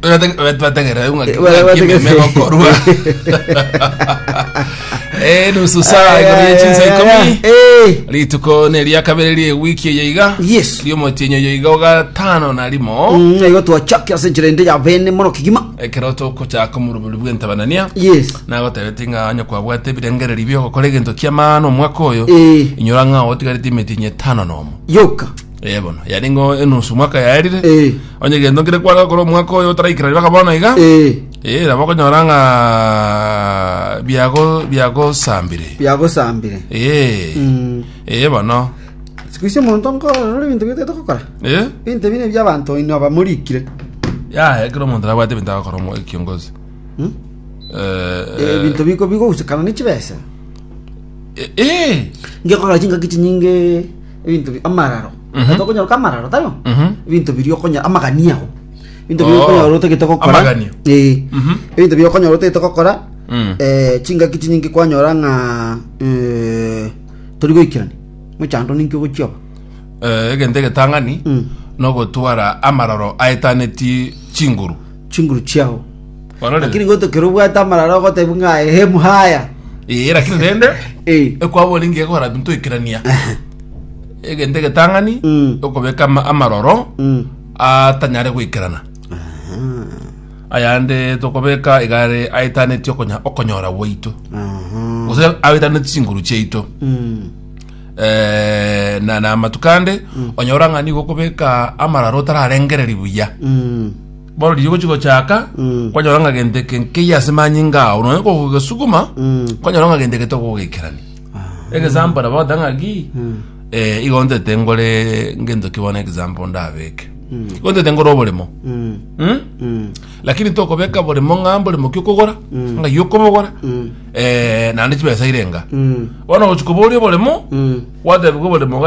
Twete- we- twetegerere ng'a- Eh, wale- ng'a wale- kimeme gokorwa. Eh, nusu saa igoro ya chinsa ikomi Eh, rituko neria kabere rie wiki eye iga Yes. riomotienyo yo iga ogatano na rimo mm, igo twachakira ase enchera ende ya bene mono kigima ekero tokochaka omorobori bw'entabanania yes nagotebete ng'a onye kwabwate ebirengereri biogokora egento kiamano omwaka oyo Eh. inyora ng'a otigarete emetienyo etano nomo yoka Eh, bono yari ngo enusu mwaka yaerire Eh. onye gento nkire kwara gokora omwaka oyo otaraikera ribaga bono iga Eh, Eh, nabo okonyora ng'a biago biagosambire biagosambire Eh, Mm. eh, bono siku icio omonto nkorora ebinto biote togokora Eh, ebinto bine biabanto ino abamorikire yaya kera omonto nabwate ebinto agakora omo- ekiongozi Mm? Eh, Eh, ebinto biko bigogusekana ne chibesa eh, eh, ngekora chingaki chinyinge ebinto bi- amararo Mhm. tokonyoka amararo tayo Mhm. ebinto biri okonya amagania ago ebinto biri Oh. okonyora otagete gokora Amagania. Eh. Mhm. ebinto biri okonyora otagete gokora Mm. eh, chingaki chinyingi kwanyora ng'a eh, tori goikerani mochando ninki ogochioba Eh, egento egetang'ani Mm. nogotwara amararo aetaneti chinguru chinguru chiao. Barorere. Lakini goto kero obwate amararo ogotebi ng'a ehe muhaya. Ee, lakini rende Eh. ekwabori ngiya gokora binto ikerania egento egetang'ani Mm. okobeka ama- amaroro Mm. atanyare goikerana ayande tokobeka igare aetaneti okonya- okonyora gwaito Aha. gose aetaneti chinguru chiaito Mm. Eh, na na amatukande onyora ng'ani gokobeka amararo otararengereri buya Mm. barorire gochi gochaka Mm. kwanyora ng'a gento eke nkeiyo ase manyinga ao nonya kogogesuguma Mm. kwanyora ng'a gento eke tokogoikerani example nabo bagoteba ng'a ki Mm. eh, igo ntete ngore ngento ki bono example ndabeke Mm. igo ntete ngore oboremo Mm. Mm? Mm. lakini tokobeka boremo ng'a mboremo ki okogora Mm. ng'ai okobogora Mm. eh, naende chibesa irenga Mm. bono gochi koboria oboremo Mm. gwatebiwa oboremo